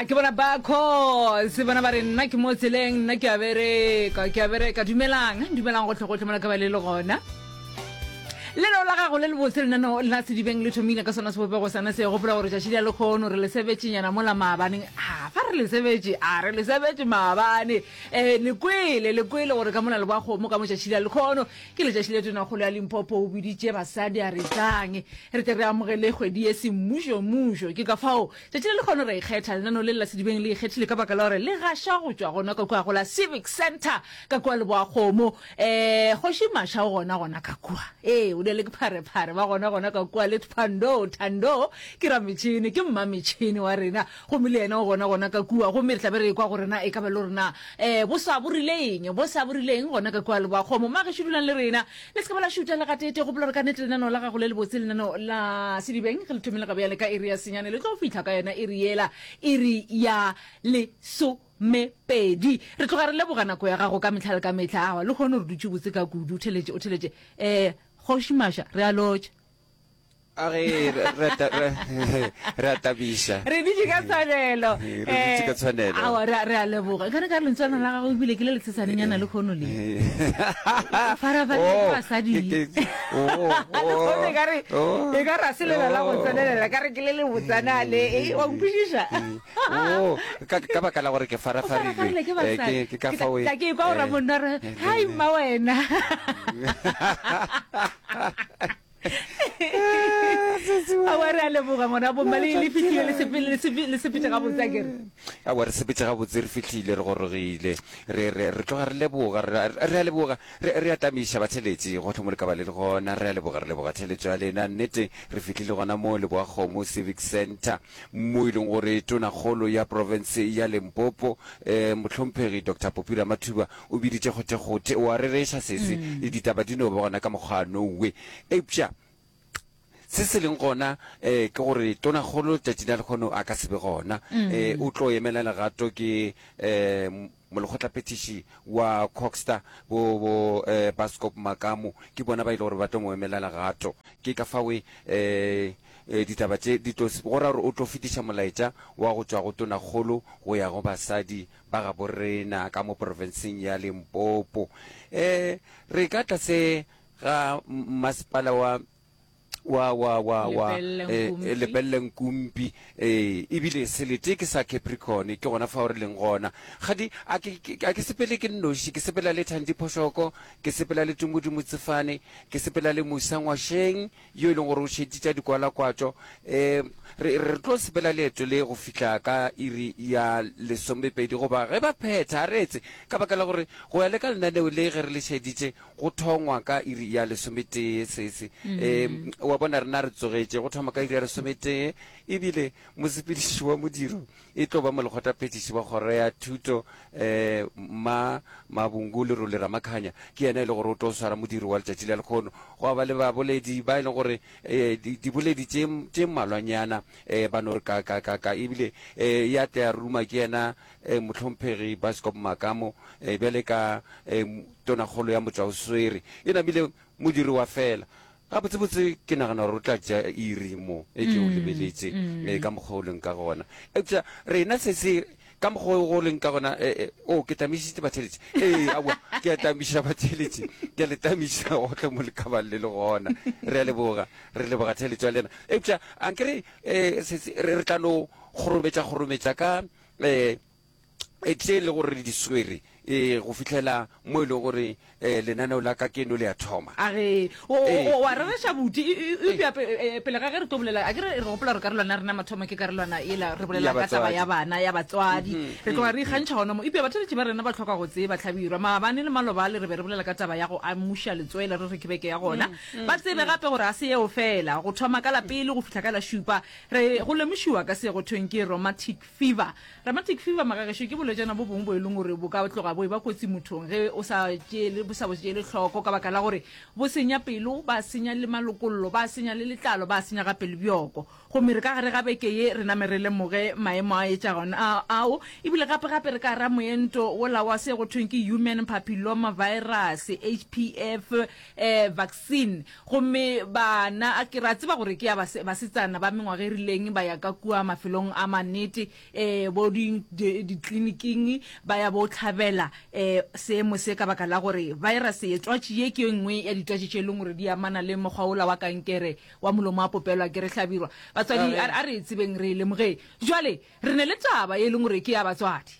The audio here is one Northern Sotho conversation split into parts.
a ke bona ba cos bona ba re nna ke mo tseleng nna ke a bereka ke a bereka dumelang dumelang gotlhe gotlhe mola ka ba le le gona lenao la gago le le botse lenaneo la sedibeng le thomile ka sona sebopego sana se gopola gore tšatši le lekgono re le sebetšenyana mola maabaneng a fa re le sebetše a re le sebetše maabane um lekwele lekwele gore ka mona le bwa kgomo ka motšatši la lekgono Ke letšatši le tonakgolo ya Limpopo o biditše basadi a re tlang re tle re amogele kgwedi ye semmušo mmušo. Ke ka fao tšatši le lekgono ra ikgetha lenano le la sedibeng le ikgethile ka baka la gore le gaša go tšwa gona ka kua go la Civic Centre ka kua Leboakgomo. Ee, Kgoši Masha o gona gona ka kua. Ee, o dele ke pharephare ba gona gona ka kua le Thpando. Thando ke rametšhini, ke mmametšhini wa rena. Gomme le yena o gona, gona ka kua, gomme re tla be re ekwa gore na e ka ba lo re na, ee, boswa bo rile eng, boswa bo rile eng gona ka kua, leboa kgomo. Mma gešo dulang le rena. Le se ke ba la šuta le gatete. Gopola gore ka nnete lenaneo la gago le lebotse, lenaneo la Sedibeng, ge le thomile ga bjale ka iri ya senyane, le tlo fihla ka yona iri yela, iri ya lesomepedi. Re tloga re leboga nako ya gago ka mehla le ka mehla. Aowa, lehono re dutše botse ka kudu. O theletše, o theletše. Ee, Kgoši Masha, re a lotšha. a re re a tabiša re ditše ka tshwanelo re ditše ka tshwanelo awa re a leboga ka re ka lentswana la gago ebile ke le letshesanyana le kgono le farafalebasadi kare e ka ra selela la go tsenelela ka re ke le le botsana le e wa nkwešiša ka baka la gore ke farafarile ke ka fao ke e kwa o ramonna re hai mma wena awa re a leboga ngwana bomma le le fitlhile le sepele le sepe- le sepete ga botsa kere awa re sepetse gabotse re fitlhile re gorogile re re- re tloga re leboga re a- re a leboga re re a tamiša batheletši gotlhe mo le ka ba le le gona re a leboga re leboga theletšo ya lena nnete re fitlhile gona mo leboa kgomo civic center mo e leng gore tonakgolo ya province ya limpopo um mohlomphegi dr popira mathuba O biditše kgothekgothe, o a rereša sesi, le ditaba di no ba gona ka mokgwa no we. Eupša se se leng gona eh, ke gore Tonakgolo letšatšing la lekgono a ka se be gona. Eh, o tlo emela legato ke eh, m- molekgotlaphethiši wa Coxter, bo, bo eh, Baskop Makamu, ke bona ba e le gore ba tlo mo emela legato. Ke ka fao eh, eh, ditaba tše di tlo, s- go ra gore o tlo fetiša molaetša wa go tšwa go Tonakgolo go ya go basadi ba gabo rena ka mo porofenseng ya Limpopo. E re ka tlase ga mmasepala wa wa wa wa wa e lebelle nkumpi e ebile selete ke sa capricorn ke gona fa o re leng gona gadi a ke sepele ke nnoši ke sepela le thandi phošoko ke sepela le tumodimo tsefane ke sepela le musa ngwašeng yo e leng gore o šetše tša dikwalakwatšo. Re re tlo sepela leeto le go fihla ka iri ya lesomepedi goba ge ba phetha, a reetse, ka baka la gore go ya le ka lenaneo le ge re le šeditše go thongwa ka iri ya lesometee. Sese, wa bona, rena re tsogetše go thoma ka iri ya lesometee, e bile mosepediši wa modiro E tlo ba molekgotaphethiši wa kgoro ya thuto, Mma Mabungu Lerole Ramakhanya, ke yena e le gore o tlo swara modiro wa letšatši la lekgono. Gwa ba le baboledi ba e leng gore diboledi tše mmalwanyana ba no re kakakaka ebile ya tla ya ruma ke yena Mohlomphegi Baskop Makamo bjale ka Tonakgolo ya Motšwaoswere. E namile modiro wa fela. Gabotsebotse ke nagana gore o tla tšea iri mo e ke o lebeletše e ka mokgwa o leng ka gona. Eupša rena se se ka mokgwa o go leng ka gona e, e, o ke tamišitše batheeletše. Ee, aowa, ke a tamiša batheeletše. Ke a le tamiša gohle mo le ka bang le le gona. Re a leboga. Re leboga theeletšo ya lena. Eupša a nke re, e, se se re, re tla no kgorometša-kgorometša ka, e, e tle le gore re di swere e go fitlhela mo e leng gore um lenaneo la ka keno le a thoma age o Ee. o- o a rereša buti E- e- e- eupša pe- e- e- pele ga ge re tlo bolela a ke re re gopola gore karolwana ya rena mathomo ke karolwana ela re bolela Ya ka taba batswadi. ya bana ya batswadi re tloga re ikgantšha gona mo eupša batheletši ba rena ba tlhoka go tseba tlhabirwa maabane le malobale re be re bolela ka taba ya go amuša letswele re re ke beke ya gona ba tsebe gape gore ga se yeo fela go thoma ka la pele go fihla ka la šupa re go lemošiwa ka se go thweng ke romantic Fever, Rheumatic fever, magagešo ke bolwetšana bo bongwe bo e leng gore bo ka tloga bo e ba kotsi mothong ge o sa tšeele bo sa bo tšeele hloko ka baka la gore bo senya pelo, ba senya le malokollo, ba senya le letlalo, ba senya gape le bjoko. Gomme re ka gare ga beke ye re name re lemoge maemo a etšagon a ao ebile gape-gape re ka ra moento wola wa se go thweng ke Human Papilloma Virus, HPV, eh, vaccine. Gomme ba na, a ke re a tseba gore ke ya base, basetsana ba mengwaga e rileng, ba ya ka kua mafelong a mannete, ee, bo di, di, dikliniking, ba ya bo hlabela, ee, seemo se, ka baka la gore virus ye, twatši ye, ke ye nngwe ya ditwatši tše e leng gore di amana le mokgwa wola wa kankere wa molomo wa popelo, a ke re hlabirwa. Batswadi, a, a re e tsebeng, re e lemogeng. Bjale, re ne le taba ye e leng gore ke ya batswadi.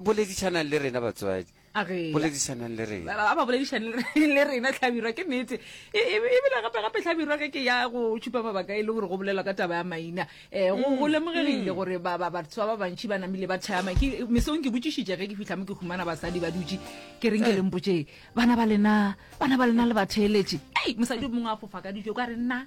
boledišanang le rena batswadi boledišanang le rena ba ba boledišanang le rena tlhabirwa ke nete e, e, e, ebile gape gape tlhabirwa ge ke ya go tšhupa mabaka e le gore go bolelwa ka taba ya maina um go mm, lemogegile mm. gore batho ba ba bantšhi ba namile ba thaya mesong ke botšišitše ge ke fitlha mo ke humana basadi ba dutše ke reng ke eh. lempotšee bana ba lena bana ba lena le batheeletše ei mosadi mongwe a fofa ka dijo ka re nna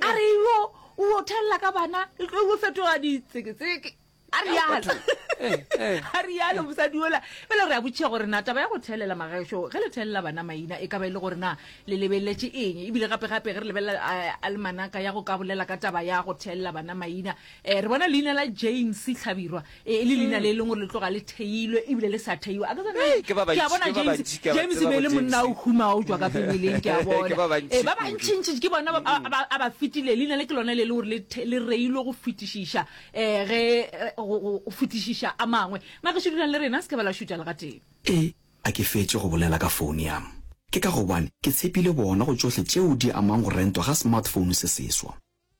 a re yo o yo thelela ka bana e tlo yo fetoga ditseketseke a re yalo eh, eh. a re yalo mosadi ola fela re a botšhega gore na taba ya go thelela magaešo ge le thelela bana maina e ka ba e le gore na le lebeletse eng ebile gape-gape ge re lebelela eh, almanaka ya go ka bolela ka taba ya go thelela bana maina E, re bona leina la James Hlabirwa e, e le leina le e leng gore le tloga le theilwe ebile le sa theiwa. A ke tsone, Hei, ke ba ke a bantši, bona ke ba James, bantši, ke a ba James tseba be e le bo monna o James. humao tšwa ka pebeleng, ke a Ke bona. ba bantši E, ba kudu. bantšintši ke bona ba, ba, ba, a ba fetile. Leina le ke lone le e le gore le, the- le reilwe go fetišiša, um ge, eh, go, go, go fetišiša a mangwe. Magešu dulang le rena, se ke ba la šutša le gatee. E, a ke fetše go bolela ka founo ya m. Ke ka gobane ke tshepile bona go tšohle tšeo di amang go rentwa ga smartphone se seswa.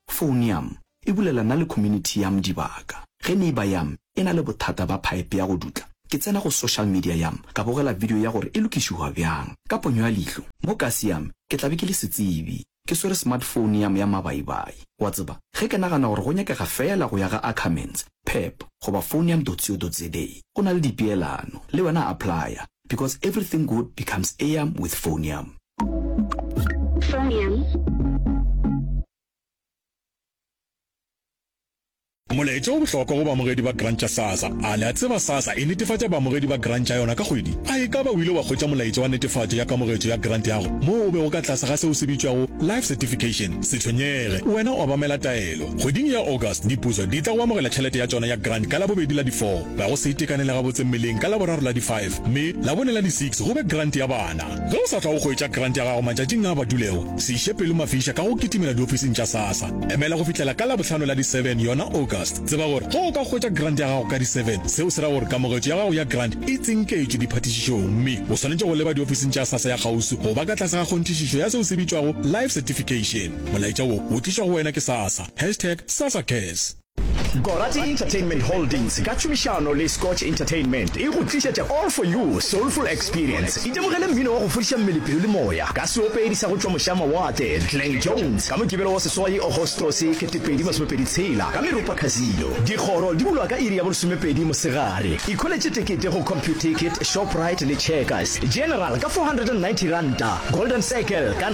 Foun yam e bulela na le community yam dibaka. Ge neighbour yam e na le bothata ba pipe ya go dutla, ke tsena go social media yam ka bogela video ya gore e lokišihwa byang. Ka ponyo ya lihlo, mo kasi yam ke tla be ke le setsebi. Ke swere smartphone yam ya mabaibai. Wa tseba, ge ke nagana gore go nyakega feela go ya ga Ackermans, Pep goba phone ya Ndotsio Dodziedei o na le dipeelano le wena applya because everything good becomes eam with phoneam. Molaetša o bohlokwa go baamogedi ba grant tša SASSA. A le a tseba SASSA e netefatša baamogedi ba grant tša yona ka kgwedi? A e ka ba o ile wa hwetša molaetša wa netefatšo ya kamogetšo ya grant yago moo o bego ka tlase ga se o se bitšwago Life Certification? Se tshwenyege, wena o obamela taelo. Bofelo. Kgweding ya August, dipuso di tla go amogela tšhelete ya tšona ya grant ka Labobedi la di 4, ga go se itekanele gabotse mmeleng ka Laboraro la di 5, mme Labone la di 6 go be grant ya bana. Ge o sa tla go hwetša grant ya gago matšatšing a a badulego, se iše pelo mafiša ka go kitimela diofising tša SASSA. Emela go fihlela ka Labohlano la di 7, yona August. Tseba gore ge o ka hwetša grant ya gago ka di 7, seo se ra gore kamogetšo ya gago ya grant e tsinketšwe diphathišišong mme o swanetše go leba diofising tša SASSA ya kgauswi go ba ka tlase ga kgonthišišo ya seo se bitšwago Life Certification. Molaetša wo o tlišwa go wena ke SASA, hashtag SasaCares. Gorati Entertainment Holdings ka tšhomišano le Scotch Entertainment e go tlišetša All For You, Soulful Experience. Itemogele mmino wa go fodiša mmele, pelo le moya ka seopedi sa go tšwa mošamawatle, Glen Jones, ka Mokibelo wa seswai, Agostose, 2026, ka Meropa Casino. Dikgoro di bulwa ka iri ya bolesomepedi mosegare. Ikholetše tekete go Computicket, Shoprite le Checkers. General ka R490, Golden Circle ka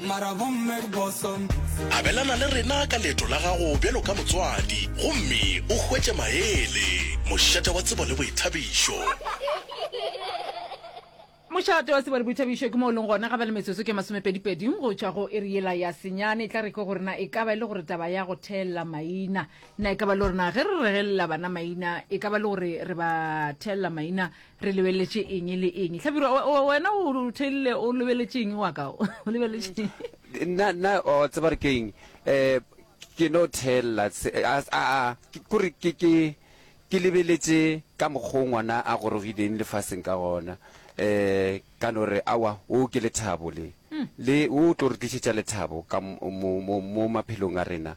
Mara bomme boso. Abelana le rena ka leeto la gago bjalo ka motswadi gomme o hwetše maele, mošate wa tsebo le boithabišo. Mošate wa tsebo le boithabišo ke mo o leng gona ga ba le metsotso ke masomepedipedi go tšwa go iri yela ya senyane. E tla re ke gore na e ka ba e le gore taba ya go theelela maina, na e ka ba le gore na ge re regelela bana maina e ka ba le gore re ba theelela maina Re lebeletše eng le eng? Hlabirwa, we- we- wena o o theilile o lebeletše eng wa ka? O o lebeletše eng? nna nna o tseba re ke eng um ke no thelela se- a a- a, ke- kore ke ke ke lebeletše ka mokgwa o ngwana a gorogileng lefaseng ka gona um ka no re awa o ke lethabo le le o tlo re tlišetša lethabo ka mo- mo mo- mo maphelong a rena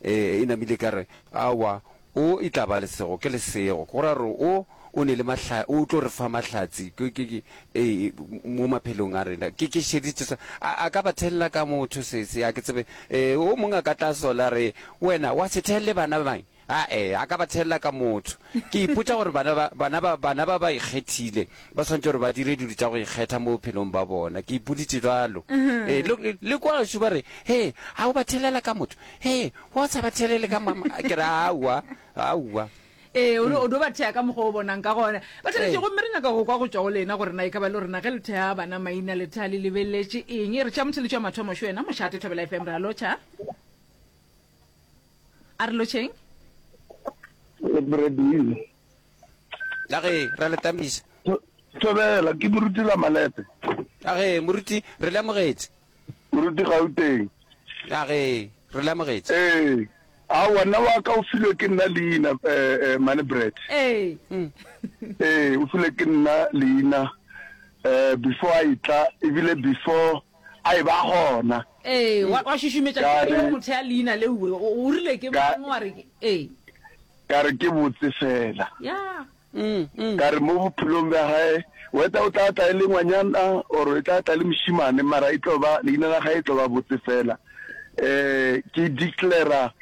e namile e ka re, Aowa, O e tla ba lesego ke lesego. Go ra gore O, O ne le mahla, O tlo re fa mahlatse, ke, ke, ke, ee, mo maphelong a rena. Ke, ke šeditše sona. A, a ka ba thelela ka motho se, se, a ke tsebe. Ee, o mongwe a ka tla sola a re, Wena, wa se thelle bana ba mine? Aa, a ka ba thelela ka motho. Ke ipotša gore bana ba, bana ba, bana ba ba ikgethile ba swanetše gore ba dire dilo tša go ikgetha mo bophelong ba bona. Ke ipoditše bjalo. Ee, le, le kua gašo ba re, Hee, a o ba thelela ka motho? Hee, wa o sa ba thelele ka mama? Ke re, Aowa, aowa. Ee, o, o no ba thea ka mokgwa o bonang ka gona. Ba thabetše, gomme re nyaka go kwa go tšwa go lena gore na e ka ba le rena ge le thea bana maina le tha le lebeleletše eng. Ee, re tšea motheletši wa mathomo, šo yena mošate. Thobela FM, re a lotšha. a re lotšheng le bredile ka ge ra le tamisa thobela ke moruti la malepe ka ge moruti re lemogetse moruti gauteng ka ge re lemogetse ee a wena wa ka o filwe ke nna leina eh, eh, mane bread ee hmm. ee o filwe ke nna leina um before a itla ebile before a e ba gona. Ee, wa, wa šušumetša Ka re- pelo mothea leina le uwe. O, o rile ke Ka- mang wa re ke? Ee, ka re ke botse fela ya, mm, mm. ka re mo bophelong bja gae weta o tla tla e le ngwanyana or e tla tla e le mošimane mara e tlo ba leina la gae e tlo ba botse fela um ke declara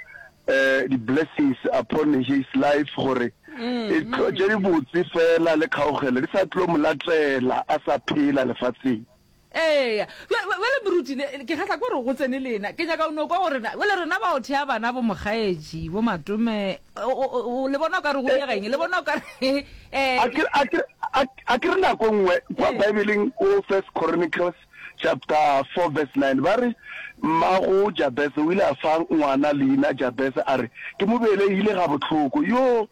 um di-blessings upon his life gore e tlo tše di botse fela le kgaogelo di sa tlo mo latela a sa phela lefatsheng Eya. Bj, bjale moruti, ne, ke kgahla ke gore go tsene lena. Ke nyaka o no kwa gore na, bjale rena ba go thea bana bo mokgaetši, bo matome, o, o, o, o le bona o ka re go diega eng? Le bona o ka re, ee, A ke, a ke, a, a ke re nako e nngwe, kwa Baebeleng ko First Chronicles chapter four verse nine, ba re, Mmago Jabese o ile a fa ngwana leina Jabese, a re, Ke mo belegile gabohloko. Yoo!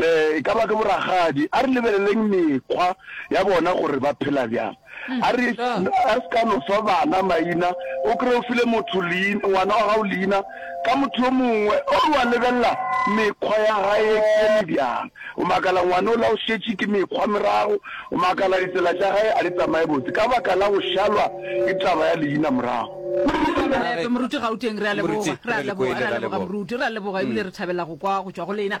E ka ba ke boragadi. A re lebeleleng mekgwa ya bona gore ba phela bjang. A re a se ka no fa bana maina, o kry-e o file motho leina, ngwana wa gago leina ka motho yo mongwe o re wa lebelela mekgwa ya gae eme bjang. O makala ngwana o la o šetše ke mekgwa morago, o makala ditsela tša gae a di tsamaye botse ka baka la go šalwa ke taba ya leina morago. Moruti Gauteng, re a leboga. Re a leboga, re a leboga moruti. Re a leboga ebile re thabela go kwa go tšwa go lena.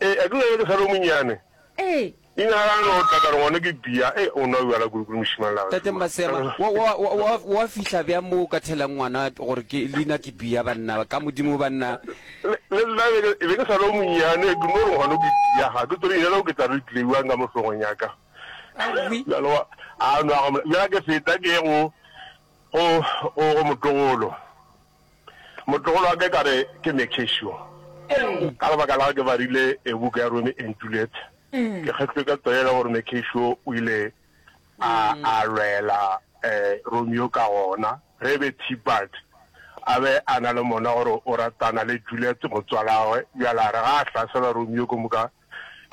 Ee, a ke lona ke sa le o monnyane. Ee. Leina la gagwe o tla ka re ngwana ke Pia. Ee, o nwa bjala kudu-kudu mošemane la gagwe. Tate Masema, wa, wa, wa, wa, wa fihla bjang mo o ka thelang ngwana gore ke, leina ke Pia, banna, ka Modimo, banna? Le, le nna be ke, be ke sa le o monnyane, ke no re ngwano ke Pia. Ha ke tsebe leina leo ke tla re tlile bjang ka mo hlogong ya ka. Aowi. Bjale wa, a nwa, bjale ke feta ke ye go, go, go, go motlogolo. Motlogolo wa ka e ka re ke Mercatio. Ka lebaka la ge ke barile ebuka ya Romeo and Juliet, ke kgethilwe ka tsela e le gore Mercatio o ile a a lwela Romeo ka gona ge be Tybalt a be a na le mona gore o ratana le Juliet motswalagwe. Bjale a re ga a hlasela Romeo ke moka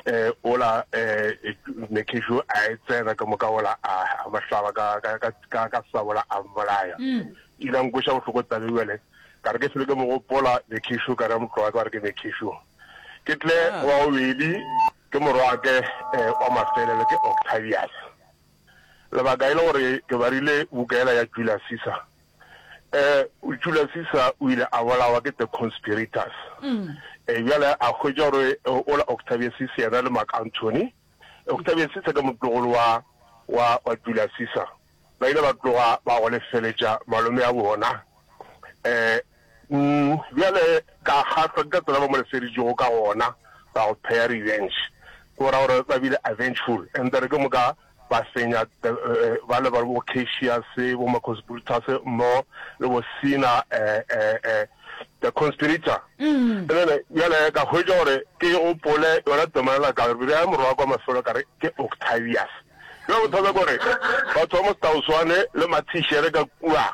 eh, ola eh, ne kesho a e tsena ka moka ola a a mahlaba ka ka ka ka ka sabola a mmolaya mm. ila nkosha bohloko tabe bjale ka re ke sele ke mo gopola ne kesho ka re motloa ka re ke ne kesho ke tle ah. wa obedi ke morwake eh, wa mafelelo ke octavius lebaka e le gore ke barile bukaela ya julius caesar Ee, Julia Caesar o ile a bolawa ke the conspirators. Ee, bjale a hwetša gore ola Octavius Caesar yena le Mark Antony. Octavius Caesar ke motlogolo wa, wa, wa Julia Caesar. Ba ile ba tloga ba go lefeletša malome a bona. Ee, mm, bjale ka kgahlwa ke ka tsela ba mo lefeditšego ka gona, ba go pheya revenge. Ke go ra gore ba bile avengeful. And then ke moka ba senya ba le ba bo Cassius bo Marcus Brutus mmogo le bo Sina the conspirator ene bjale ka hwetša gore ke gopole yona tomelela ka re ya morwa kwa mafelo ka re ke Octavius bjale bothata gore batho ba mo Stauswane le Mathishere ka kua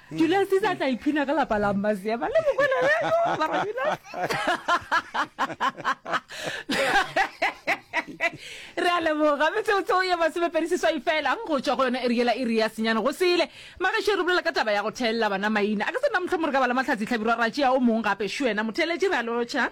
Julius Caesar a tla iphina ka lapa la Mmaseba le Mokwena Reko mara Julius re a leboga metseotseo ye masomepedi seswai fela go tswa go yona eriela iri ya senyane go sele magašo re bolela ka taba ya go theelela bana maina a ka se nna motlho mo re ka bala matlhatsi tlhabirwa ra tšea o mong gape šuena motheeletši re a lotšha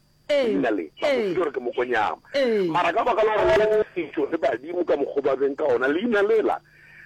Ee, Ke bina le, ba mo ee. fetša gore ke mokonyama. Ee. Mara ka baka la gore le ne setšo le badimo ka mokgo ba beng ka ona, leina lela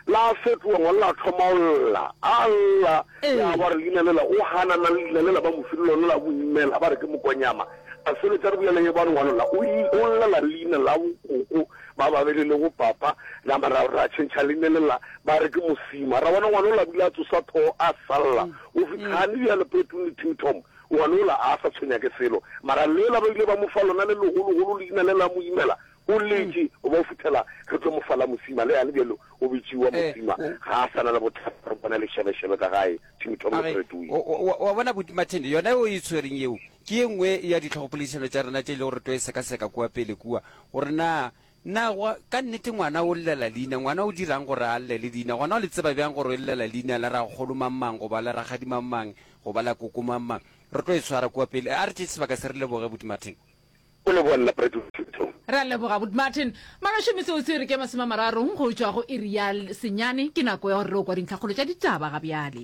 la fetoga ngwana la thoma go lla, a lla, Ee. ya ba re leina lela o hanana le leina lela ba mo file lona la boimmela, ba re ke mokonyama. A sebetša re bolela ye ba re ngwana la o i- o llela le leina la bokoko ba babele le bo papa, la ma ra ra tšhentšha leina lela ba re ke mosima. Ra bona ngwana la bile a tsosa thogo a sa lla, o fihla gane bjale Poeteng le Tim Tom Ngwana ola a sa tshwenya ke selo, mara lela ba ile ba mo fa lona le legologolo leina le la mo imela, o letše go ba go fihlala re tlo mo fa la mosima. Le yane bjalo o bitšiwa Mosima, ga a sa na le bothata re bona lešebešebe ka gae. Tim Tom le Fred Wee. O, o, o a bona, Abuti Martin, yona yeo e e tshwereng yeo ke ye nngwe ya dihlogopoledišano tša rena tše e lego gore tlo e sekaseka kua pele kua, gore na Na gwa, ka nnete ngwana o llela leina? Ngwana o dira'ng gore a llele leina? Gona o le tseba bjang gore o llela leina la rakgolo mang-mang, goba la rakgadi mang-mang, goba la koko mang-mang? Re tlo e swara kua pele. A re tšee sebaka se re leboge Buti Martin. O leboga lla Predington. Re a leboga Buti Martin. Maloši, metsotso e re ke masome a mararo go tšwa go iri ya senyane. Ke nako ya gore re yo kwa dintlhakgolo tša ditaba ga bjale.